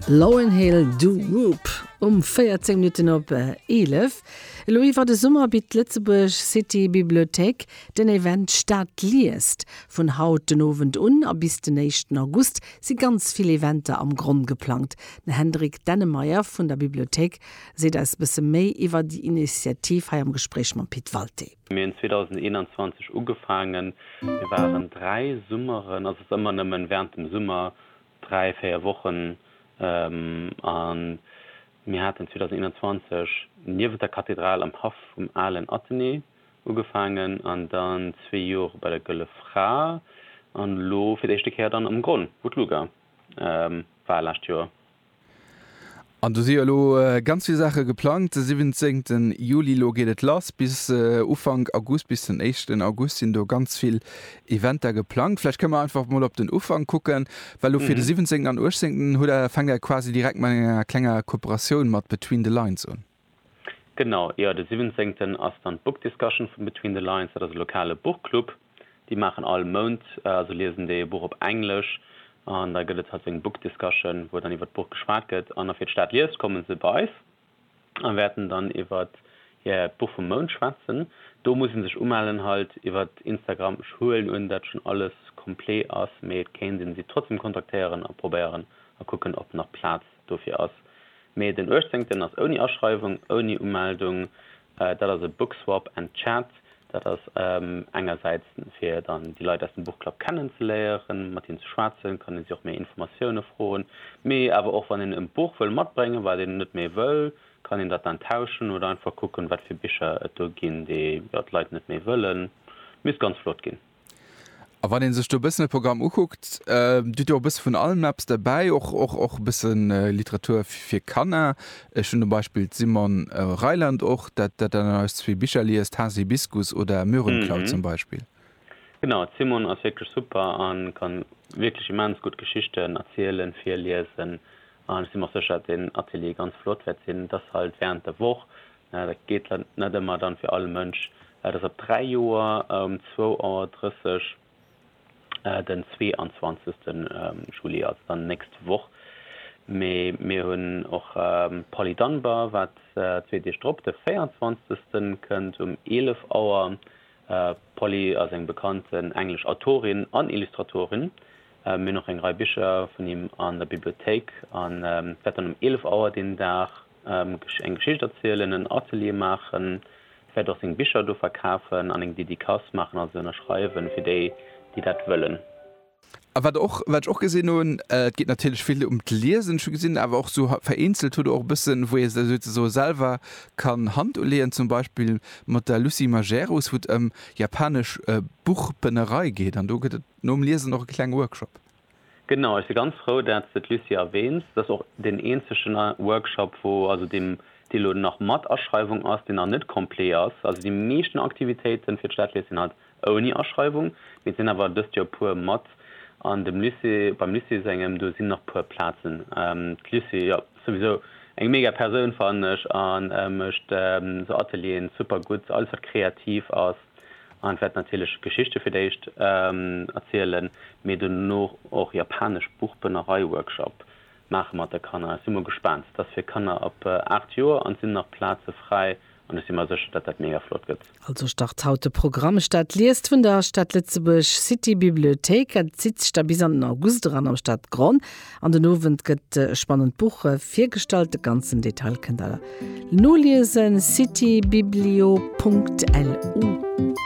Lauryn Hill Du Wop um 14 Minutten op 11. Elo iwwer de Summer bitt d'Lëtzebuerg City Bibliothéik den Event Stad liest. Vun haut den Owend un a bis den éischten August si ganz vill Eventer am Gronn geplangt. Den Hendrik Dennemeyer vun der Bibliothéik seet eis e bësse méi iwwer déi Initiativ hei am Gespréich mam Pit Walté. Mir hunn 2021 ugefaangen. Mir waren dräi Summeren, also et ass ëmmer nëmmen während dem Summer, dräi, véier Wochen, a mir haten 2021 niewent der Kathedral am Haff vum alen Athenée ugefaangen an dann zwee Jore bei der Gëlle Fra an elo fir d'éischte Kéier dann am Gronn, wou d'Luga war, lescht Joer. An do si jo elo ganz vill Saache geplangt. De 17 Juli, elo geet et lass bis Ufank August, bis den éischten August sinn do ganz vill Eventer geplangt. Vläicht kënne mer einfach mol op den Ufank kucken, well elo fir de 17 an 18 hutt Der, fänkt Der quasi direkt mat enger klenger Kooperatioun mat Between the Lines un. Genau, jo, de siwwenzéngten ass dann d'Book Discussion vun Between the Lines. Dat ass e lokale Buchclub. Déi maachen all Mount, also liesen déi e Buch op Englesch an da gëtt et halt sou eng Book Discussion, wou dann iwwert d'Buch geschwat gëtt. An afir d'Stad liest, komme se bei eis a wäerten dann iwwert hiert Buch vum Mount schwätzen. Do muss ee sech umellen halt iwwert Instagram. Ech huelen un, dat schonn alles complet ass, mee et kéint ee se trotzdem kontaktéieren a probéieren a kucken, ob nach Plaz Dofir ass. Mee den uechtzéngten ass ouni Aschreiwung, ouni Umeldung. Dat ass e Book Swap and Chat. Dat ass engersäits fir dann déi Leit aus dem Buchclub kennen ze léieren, mat hinnen ze schwätzen, kann ee si och méi Informatioune froen. Mee awer och wann een e Buch wëll matbréngen, wat een net méi wëll, kann een dat dann tauschen oder einfach kucken, wat fir Bicher et do ginn, déi jo d'Leit net méi wëllen. Misst ganz flott ginn. A wann een sech do e bëssen de Programm ukuckt, Dir hutt jo och e bësse vun allem eppes derbäi, och, och, och e bësse Literatur fir Kanner. Ech hunn zum Beispill d'Simone Reiland och, dat dat dann eis zwee Bicher liest, Haasibiskus oder Möhrenklau zum Beispill. Genau, d'Simone ass wierklech super a ka wierklech immens gutt Geschichten erzielen, virliesen. An ech si mer och sécher, datt deen Atelier ganz flott wäert sinn. Et ass halt wärend der Woch, Dat geet net ëmmer dann fir all Mënsch. Dat ass op 3 Joer um 2 Auer 30 den 22. Juli, also dann nächst Woch. Mee mir hunn och Polly Dunbar, wat zwee Deeg drop de 24. kënnt um 11 Auer. D'Polly ass eng bekannt englesch Autorin an Illustratorin. Mir hunn och eng Rei Bicher vun him an der Bibliothéik an dat wäert dann um 11 Auer deen Dag. eng Geschicht erzielen, en Atelier maachen, vläicht och seng Bicher do verkafen an eng Dedicace maachen a se ënnerschreiwen fir déi, déi dat wëllen. A wat och, wat ech och gesinn hunn, et geet natierlech vill ëm d'Liesen, ech hu gesinn awer och sou vereenzelt hutt Der och e bëssen, wou ee sech souzesoe selwer kann Hand uleeën, zum Beispill mat der Lucie Majerus, wou et ëm japanesch Buchbënnerei geet an do gëtt et nom Liesen och e klenge Workshop. Genau, ech si ganz frou dat s de d'Lucie erwähns. Dat ass och deen eenzegen Workshop wou, also deem dee lo nach mat Aschreiwung ass, deen nach net complet ass. Also déi meeschten Aktivitéiten fir d'Stadlees sinn halt ouni Aschreiwung, mee et sinn awer dëst Joer puer mat an dem Lycée, beim Lycée sengem, do sinn nach puer Plazen. D'Lucie, jo, souwisou eng mega Persoun fannen ech a mécht sou Atelieren super gutt, alles wat kreativ ass. An ech wäert natierlech Geschichte fir d'éischt erzielen, mee dono och japanesch Buchbënnerei-Workshop maache mat de Kanner. Ech si mol gespaant. Et ass fir Kanner ab 8 Joer an et sinn nach Plaze fräi an ech si mer sécher, datt dat mega flott gëtt. Also start haut de Programm Stad liest vun der Stad Lëtzebuerg City Bibliothéik. Et zitt sech da bis an den August eran am Stadgronn. An den Owend gëtt e spannend Buch virgestallt. De ganzen Detail kënnt der noliesen, citybiblio.lu.